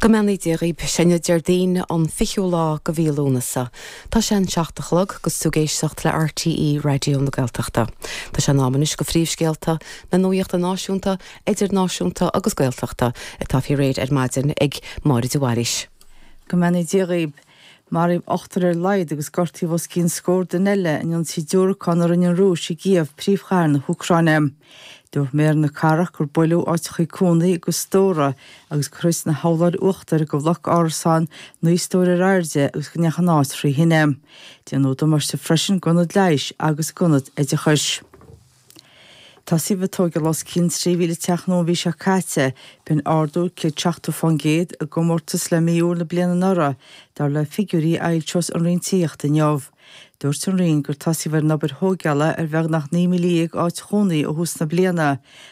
Go mbeannaí Dia dhaoib. Sé inniu Déardaoin, an fichiú lá go mhí Lúnasa. Tá sé an seacht a chlog agus tú ag éisteacht le RTÉ Raidió na Gaeltachta. Tá sé in am anois go phríomhscéalta na nuaíochta náisiúnta, idirnáisiúnta agus Gaeltachta atá fí réir ar maidin ag Máire de Bhailís. Go mbeannaí Dia dhaoib. Maraíodh ochtar ar a laghad agus gortaíodh os cionn scór duine eile in ionsaí diúracán a rinne an Rúis i gCíév, príomhchathair na hÚcráine. Dúirt Méara na Cathrach gur buaileadh áiteachaí cónaí agus stórais agus gur thit na hurláir uachtair go bhloc árasáin naoi stór ar airde agus go ndeachaigh an áit thrí thine. Déanadh damáiste freisin go ionad leighis agus go ionad oideachais. Tosaíodh ag tóigeáil os cionn 3,000 teach nua an mhí seo caite, b'in ardú 170 faoin gcéad i gcomórtas le mí Iúil na bliana anuraidh, dar le figiúirí a fhoilseos an Roinn Tithíochta inniu. Dúirt an Roinn gur tosaíodh ar an obair thóigeála ar bheagnach 19,000 áit chónaithe ó thús na bliana,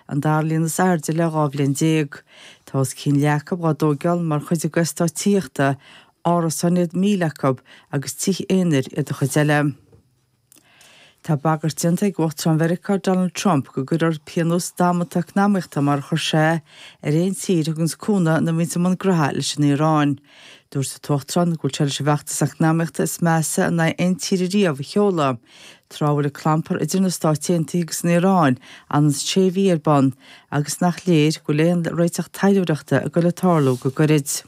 an dara líon is airde le dhá bhliain déag. Tá os cionn leath acu dhá dtóigeáil mar chuid go eastáit tithíochta, árasáin iad 1,000 acu agus tithe aonair iad an chuid eile. Tá bagairt déanta ag Uachtarán Mheiriceá Donald Trump go gcuirfear pionós damanta eacnamaíochta mar a chuir sé ar aon tír a thuganns cúnamh nó a bhíonns i mbun graithe leis an Iaráin. Dúirt an tUachtarán go bhfuil sé leis an bhfeachtas eacnamaíochta is measa in aghaidh aon tíre riamh a sheoladh tráth a bhfuil an clampar idir na Stáit Aontaithe agus an Iaráin anois sé mhí ar bun agus nach léir go bhfuil aon réiteach taidhleoireachta ag goil ag tarlú go gairid.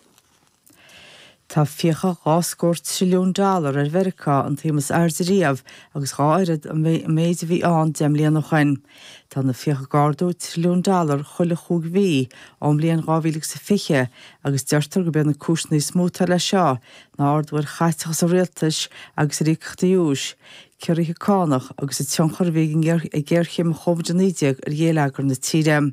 Tá fiacha dhá scór trilliún dollar ar Mheiriceá, an tsuim is airde riamh agus dhá oiread an méid a bhí ann deich mbliana ó shin. Tá na fiacha ag ardú trilliún dollar chuile chúig mhí ón mbliain 2020 agus deirtear gurb iad na cúiseanna is mó atá leis seo ná ardú ar chaiteachas an rialtais agus ar íocaíochtaí úis, ciorruithe cánach agus an tionchar a bhí ag géarchéim Covid-19 ar ghéilleagar na tíre.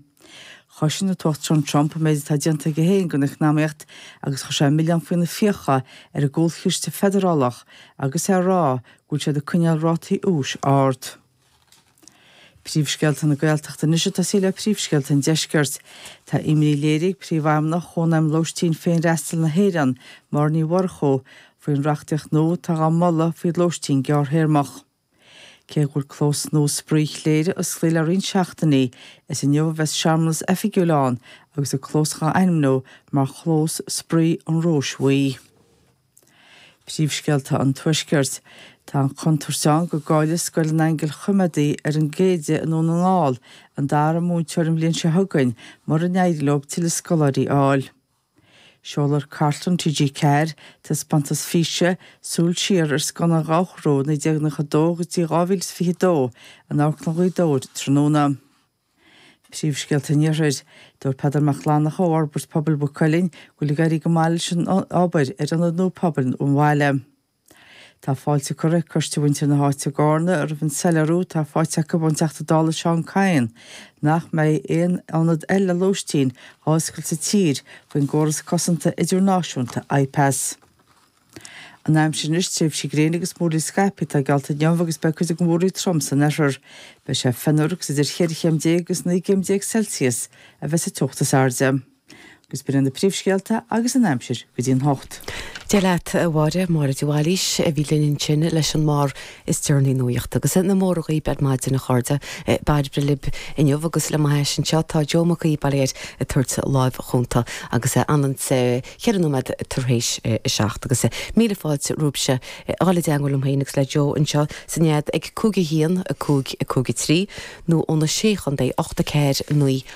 Chosain an tUachtarán Trump an méid atá déanta aige féin don eacnamaíocht agus chuir sé an milleán faoi na fiacha ar an gcúlchiste feidearálach agus é ag rá go bhfuil siad ag coinneáil rátaí úis ard. Príomhscéalta na Gaeltachta anois ag tosaí le príomhscéalta an deiscirt. Tá imní léirithe ag Príomhfheidhmeannach Chónaidhm Lóistín Féinfhreastail na hÉireann, Máire Ní Mhurchú, faoin reachtaíocht nua atá dhá moladh faoi lóistín gearrthéarmacha. Cé go bhfuil clós nua spraoi Chléire osclaithe le roinnt seachtainí, is inniu a bheas searmanas oifigiúil ann agus an clós dhá ainmniú mar Chlós Spraoi an Róis Bhuí. Príomhscéalta an Tuaiscirt. Tá an chontúirt ann go gcáillfidh Scoil an Aingil Choimhéadaí ar an gCéide i nDún na nGall an dara múinteoir an bhliain seo chugainn mura n-éirí leo tuilleadh scoláirí a fháil. Seolfaidh Cartlann TG4 taispeántas físe, Súil Siar ar Scannáin Dhobharchú 1992 go dtí 2022 in Amharclann Ghaoth Dobhair tráthnóna. Príomhscéalta an Iarthair. Dúirt Peadar Mac Fhlannchadha ó Fhorbairt Pobail Mhaigh Cuilinn go bhfuil ag éirí go maith leis an obair ar ionad nua pobail an bhaile. Tá fáilte curtha ag cuid de mhuintir na háite i gCarna roimh an soiléiriú atá faighte acu ón Teachta Dála Seán Kyne nach mbeidh aon ionad eile lóistín á oscailt sa tír faoin gcóras cosanta idirnáisiúnta IPAS. An aimsir anois, tréimhsí gréine agus múraíl scaipthe atá geallta inniu agus beidh cuid den mhúraíl trom san oirthear. Beidh sé fionnuar agus idir 14 chéim agus 19 gcéim Celsius a bheidh sa teocht is airde. agus b'in iad na príomhscéalta agus an aimsir go dtí an hocht. Dia leat, a Mháire, Máire de Bhailís a bhí linn ansin leis an mbarr is deireanaí nuaíochta. Agus na mora daoibh ar maidin, a chairde. Bairbre libh inniu agus le m'ais anseo tá Joe Mac Aodha Bairéad ag tabhairt láimh chúnta agus an t-am ceithre nóiméad tar éis a seacht. Agus míle fáilte romhaibhse a fháil i dteangmháil liom féin agus le Joe anseo sa nead ag 5 1 5 5 3 nó ó na Sé Chontae, 8 4 9